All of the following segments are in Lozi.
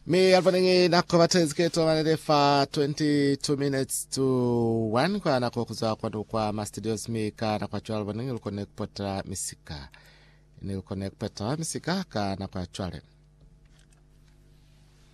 Mi alfa ningi nako batezi keto manele fa 22 minutes to 1 kwa nako kuzwa kwa kwa ma studios mi ka na kwa chwalo ningi lukone kupota misika. Ni lukone kupota misika ka na kwa chwalo.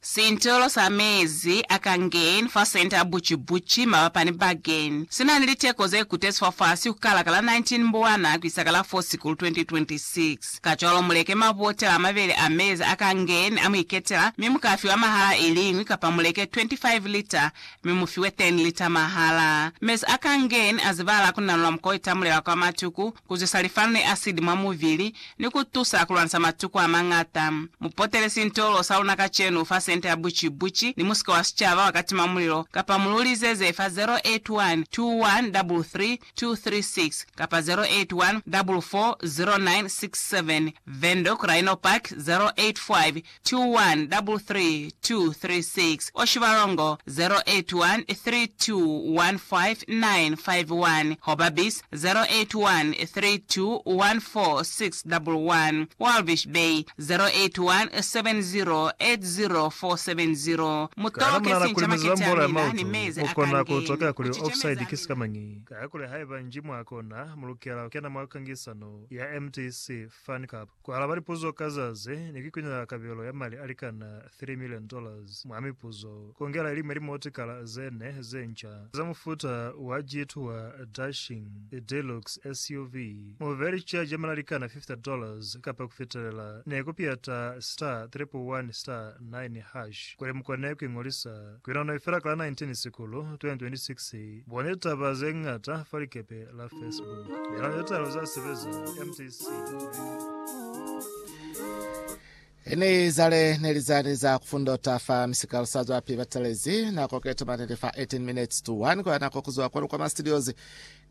Sintolo sa mezi a Kangen fa Centre Bucibuci mabapani Bagen si na ni liteko ze kutezi fafasi ku kala ka la 19 Mbwana ku isa ka la 4 Sikulu 2026. Kacwalo mu leke mabotela a mabeli a mezi a Kangen a mu iketela mi mu ka fiwa mahala iliñwi kapa mu leke 25 lita mi mu fiwe teni lita mahala. Mezi a ka ngeni a zibala ku nanula mukwa itamulela kwa matuku, ku zwisa lifanu ni asidi mwa mubili, ni ku tusa ku lwanisa matuku a mañata. Mu potele sintolo sa luna kacenu fa sente ya buci buci ni musika wa sicaba wa katima mulilo, kapa mu lu lizeze fa 081 2133 236 kapa 081 440967, Vendo, Craino Park, 085 2133236 or Shibalongo 0813215951 hoba Bis 0813214611, Walvis Bay 0817080470. Mu Kaya toke namunana kuli sincama muzeba kiti mbola ya amina ni maoto, mezi a mukona kange, kutokela ku kuli ci offside cemeza ki sika mañi. Kaya kuli haiba nji mwakona, mulukela kukena mwa kangisano ya MTC Fan Cup. Ku alaba lipuzo ka za ze ne ki kunyaka kabelo ya mali a likana three million dollars mwa mipuzo, kongela iliñwi ya limotikala ze ne ze nca za mufuta wa Jeet wa Dashing Deluxe SUV, mu be li charge ya mali a likana fifty dollars kapa ku fitelela, ne ku piyata star triple one star nine hash kuli mu kone ku ingolisa. Ki nano i fela ka la 19 Sikulu 2026. Bone litaba ze ñata fa likepe la Facebook. Nano ye tala za sebeza MTC Line. Ini zale ne li zani za kufundota fa misikalo sa zwapi batelezi nako ke tomani li fa 18 minutes to 1 kwa nako kuzwa kwanu kwa ma studios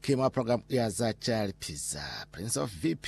ki mwa program ya za calipiza prince of vp